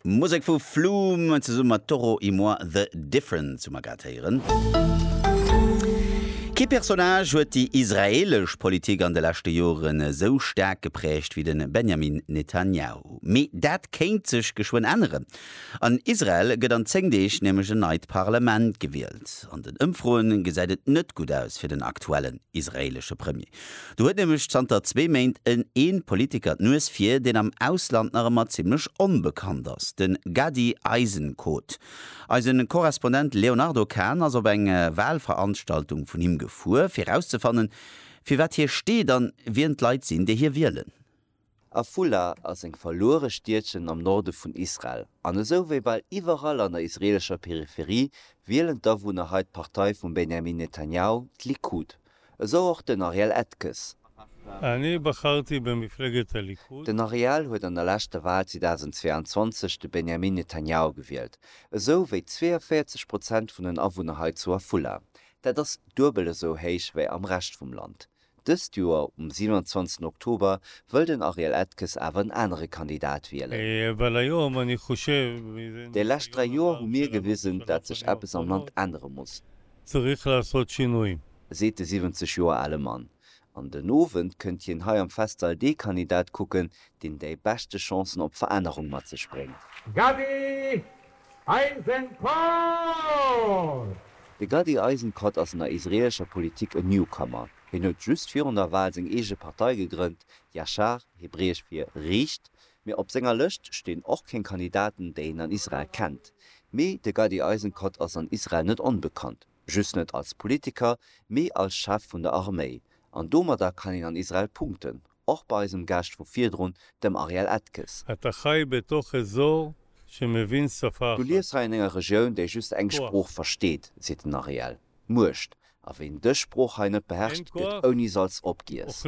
Musek vu Flume zesumme mat Toro y Moi The Difference hu mer grad héieren. Kee Personnage huet déi israeelesch Politik an de leschte Joren esou staark gepräägt wéi de Benjamin Netanyahu. Mee dat kéint sech geschwënn änneren. An Israel gëtt an 10 Deeg nämlech en neit Parlement gewielt. An den Ëmfroe gesäit et net gutt aus fir den aktuellen israeelesche Premier. Do huet nämlech zanter zwee Méint en een Politiker d'Nues vir, deen am Ausland nach ëmmer zimmlech onbekannt ass, den Gady Eisenkot. Eisen Korrespondent Léonardo Kahn ass op eng Wahlveranstaltung vun him gefuer, fir erauszefannen, fir wat hie steet an wien d'Leit sinn, déi hie wielen. Afula ass eng verluere Stiedchen am Norde vun Israel, an esou wéi bal iwwerall an der israelescher Peripherie wielen d'Awunner hei d'Partei vum Benjamin Netanyahu, d'Likud. Esou och den Ariel Atkes. Den Ariel huet an der leschter Wal 2022 de Benjamin Netanyahu gewielt, esou wéi 42 Prozent vun den Awunner hei zu Afula. Dat ass duebel esou héich wéi am Rescht vum Land. Dëst Joer um 27 Oktober wëll den Ariel Edkes awer en anere Kandidat wielen. Déi lescht 3 Joer hu mir gewisen, dat sech eppes am Land ännere muss, seet de 70 Joer ale Mann. An den Owend kënnt hien hei am Festsall dee Kandidat kucken, deen déi beschte Chancen op Verännerung mat sech bréngt. Gaby! Eisenkot! De Gadi Eisenkot ass an der israeelescher Politik en Newcomer. Hien huet just virun der Wal seng eege Partei gegrënnt, Yashar, hebräesch fir riicht, mee op senger Lëscht stinn och keng Kandidaten, déi een an Israel kennt. Mee de Gadi Eisenkot ass an Israel net onbekannt, just net als Politiker, mee als Chef vun der Arméi. An domadder kann een an Israel punkten. Och bei eisem Gast vu virdrun, dem Ariel Etges. Du liefs hei an enger Regioun, déi just eng Sprooch versteet, seet den Ariel. Muecht. A ween dës Sprooch hei net beherrscht, gëtt ouni Salz opgiess.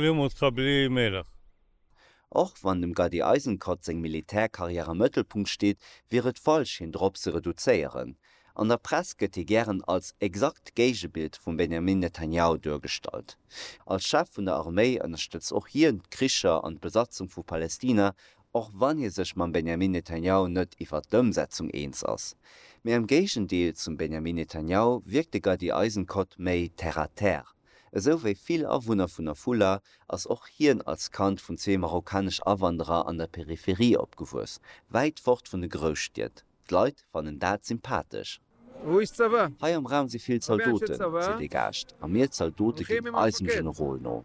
Och wann dem Gadi Eisenkot seng Militärkarriär am Mëttelpunkt steet, wier et falsch, hien drop ze reduzéieren. An der Press gëtt hie gären als exakt Géigebild vum Benjamin Netanjahu duergestallt. Als Chef vun der Arméi ënnerstëtzt och hien d'Kricher an d'Besatzung vu Palestina, och wann hie sech mam Benjamin Netanjahu net iwwert d'Ëmsetzung eens ass. Mee am Géigendeel zum Benjamin Netanjahu wierkt de Gadi Eisenkot méi terre à terre. Esou wéi vill Awunner vun Afula ass och hien als Kand vun zwee marokkanesch Awanderer an der Peripherie opgewuess, wäit fort vun de Grousstied. D'Leit fannen dat sympathesch. Wou is d'Sava? Hei am Raum si vill Zaldoten, seet ee Gaascht, a mir Zaldote ginn eisem Generol no.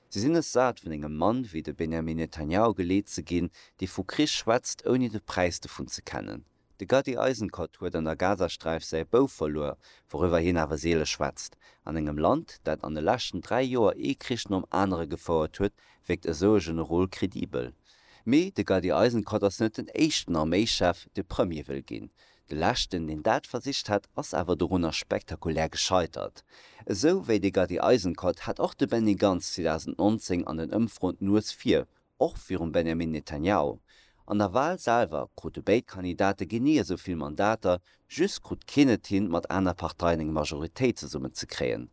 Si sinn es sat, vun engem Mann wéi de Benjamin Netanjahu geleet ze ginn, dee vu Krich schwätzt, ouni de Präis dovun ze kennen. De Gadi Eisenkot huet an der Gazasträif säi Bouf verluer, wouriwwer hien awer seele schwätzt, an engem Land, dat an de leschten dräi Joer ee Krich nom anere gefouert huet, wierkt esou e Generol kredibel. Mee de Gadi Eisenkot ass net den éischten Arméischef, dee Premier wëll ginn. De leschten, deen dat versicht hat, ass awer dorunner spektakulär gescheitert. Esou wéi de Gadi Eisenkot hat och de Benny Gantz 2019 an den Ëmfroen d'Nues vir, och virum Benjamin Netanjahu. An der Wal selwer krute béid Kandidate genee esou vill Mandater Just krut keen et hin, mat aner Parteien eng Majoritéit zesummen ze kréien.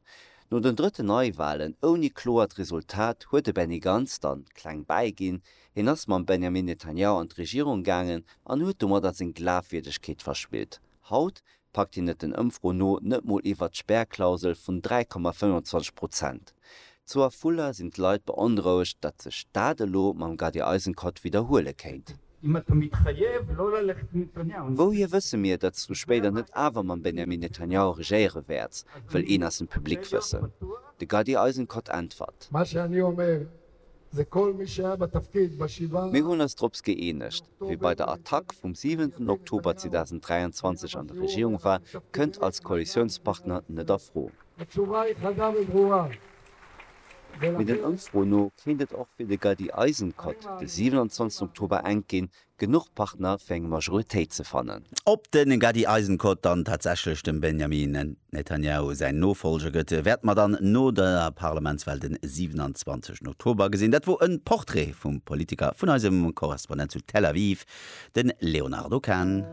No den drëtten Neiwahlen ouni kloert Resultat huet de Benny Gantz dann kleng bäi ginn. Hien ass mam Benjamin Netanyahu an d'Regierung gaangen an huet domadder seng Glafwierdegkeet verspillt. Haut packt hien et den Ëmfro no net mol iwwert d'Spärklausel vun 3,25 Prozent. Zu Afula sinn d'Leit beonrouegt, datt sech dat elo mam Gadi Eisenkot widderhuele kéint. Wouhier wësse mir, datt du spéider net awer mam Benjamin Netanyahu regéiere wäerts? wëll een aus dem Public wëssen. De Gadi Eisenkot äntwert. Mir hunn eis drops gëeenegt, Wie bei der Attack vum siwenten Oktober 2023 an der Regierung war, kënnt als Koalitiounspartner net a Fro. Mee den Ëmfroen no kéint et och fir de Gaddi Eisenkot de 27 Oktober enk ginn, genuch Partner fir eng Majoritéit ze fannen. Ob de Gaddi Eisenkot dann tatsächlech dem Benjamin Netanjahu säin Nofollger gëtt, wäerte mer dann no der Parlamentswal de 27 Oktober gesinn. Dat wor e Portrait vum Politiker vun eisem Korrespondent zu Tel Aviv, de Léonardo Kahn.